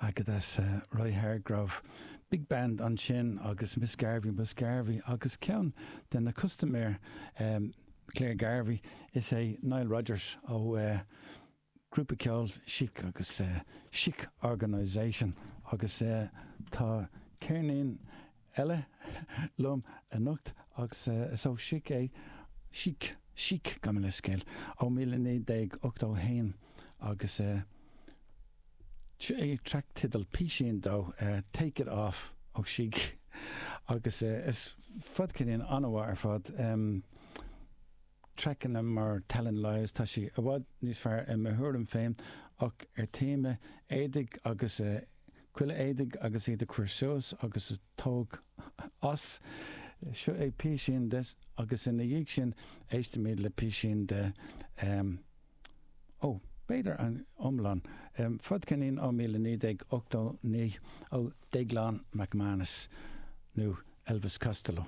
Aggadass, Roy Hargrove, Big Band ansin agus Miss Garvey Miss Garvey agus ceann de na custaiméir Claire Garvey is é Nile Rodgers ó ghrúpa ceoil Chic agus Chic Organisation agus tá ceirnín eile liom anocht agus is ó Chic é, Chic, Chic, gabh mo leithscéal, ó míle naoi déag ochtó a haon agus track teideal, písín dó, Take it off ó Chic agus is fadcheirnín an-mhaith ar fad. Traiceanna mar Telling Lies, tá sí i bhfad níos fearr i mo thuairim féin, ach ar téama éadaigh agus culaith éadaigh agus iad a chur suas agus a tóg as, seo é píosín de agus ina dhiaidh sin éistimid le píosín de em ó b'fhéidir an iomlán, fadcheirnín ó míle naoi déag ochtó naoi ó Déaglán McManus nó Elvis Costello.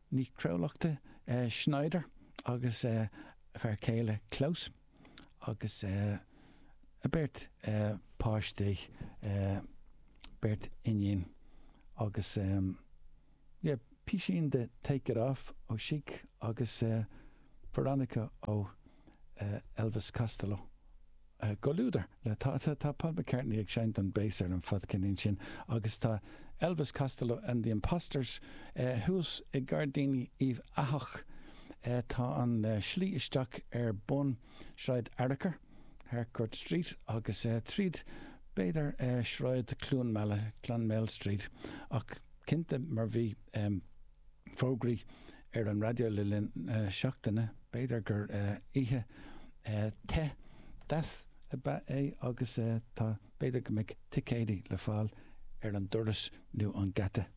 Ní Chrualaoich Schneider agus a fear céile Klaus agus a beirt páistí, beirt iníon agus yeah písín de Take It Off ó Chic agus Veronica ó Elvis Costello, Comhluadar le tá tá Paul McCartney ag seinnt an bass ar an fadcheirnín sin agus tá Elvis Costello and the Imposters thuas i Gairdíní Uíbh Eathach tá an slí isteach ar bun Sráid Fhearchair, Harcourt Street, agus tríd b'fhéidir Sráid Chluain Meala, Clonmel Street, ach cinnte mar bhí. fógraí ar an raidió le linn na seachtaine. B'fhéidir gur oíche te, deas ab ea é agus tá. B'fhéidir go mbeidh ticéidí le fáil ar an doras nó an geata.